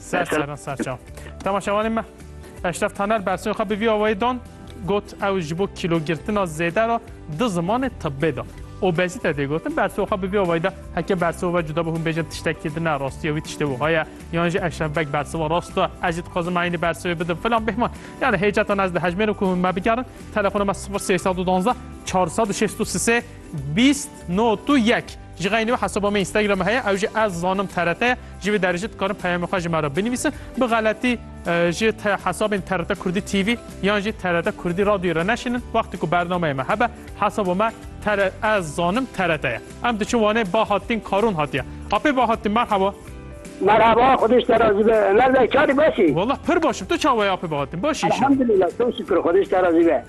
Ser seran ser çav. Temaşevanê me Eşref Taner bersiyê xwe bi vî awayî dan got ew ji bo kîlogirtina zêde re di zimanê tibbê de obezîte tê gotin bersiyê xwe bi vî awayî de heke bersiyê ve cuda bi hûn bêjin tiştekî di ne rastî ya wî tiştê wiha ye yan jî Eşref Beg bersiva rast e ez jî dixwazim eynî bersiyê bidim filan bêhman yani hêcetan ez dihejmêrim ku hûn me bigerin telefona me 0312 463 Bîst no tu yek. Ji xeynî wê hesaba me Instagramê heye ew jî ez zanim TRT ye. Ji vê derê jî dikarin peyamê xwe ji me re binivîsin. Bi xeletî ji hesabên TRT Kurdî TV yan jî TRT Kurdî Radyoyê re neşînin. Wextê ku bernameyê me hebe hesaba me ez zanim TRT ye. Em diçin Wanê Bahattin Karûn hatiye. Apê Bahattin merheba. Merheba xwedîş te razî be. Nerede çarî baş î? Wallah pir baş im. Tu çawa yî Apê Bahattin? Baş î îşe? Elhamdulillah çok şükür xwedîş te razî be.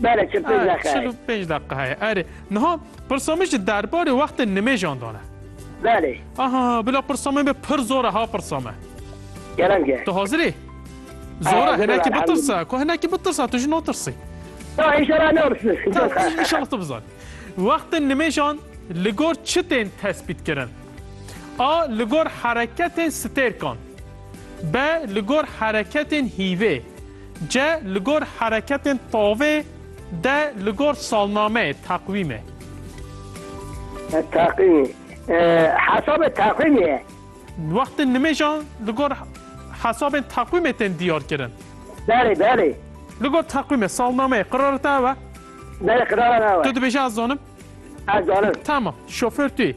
Bere çil pênc deqe. Çil û pênc deqe heye. Erê. Niha pirsa min ji derbarê wextên nimêjan dan e. Belê. Aha, bila pirsa min be pir zor e ha pirsa me. Gerem ge. Tu hazir î? Zor e hinekî bitirsa. Ku hinekî bitirsa tu jî natirsî. Ta inşallah ne olsun. İnşallah tu bizan. Wextên nimêjan li gor çi tên tespît kirin? A. Li gor hereketên stêrkan. B. Li gor hereketên hîvê. Ce li gor hereketên tavê de li gor salnameyê, teqwîmê. Teqwîmê, hesabê teqwîmê ye. Wextên nimêjan li gor hesabên teqwîmê tên diyarkirin. Belê, belê. Li gor teqwîmê, salnameyê, qirara te ew e? Belê, qirara me ew e. Tu dibêjî ez zanim? Ez zanim. Tamam, şofêr tu yî.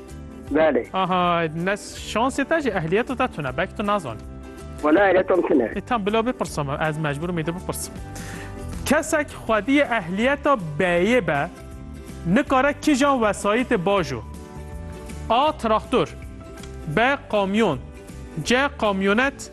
Belê. Aha nes şansê te jî ehliyeta te tune belkî tu nazanî. Wala ehliyetam tune. E tam bila bipirsa me ez mecbûrim ê de bipirsim. Kesek xwediyê ehliyeta B'yê be nikare kijan wesayîtê baş o? A. Traktor B. Kamyon C. Kamyonet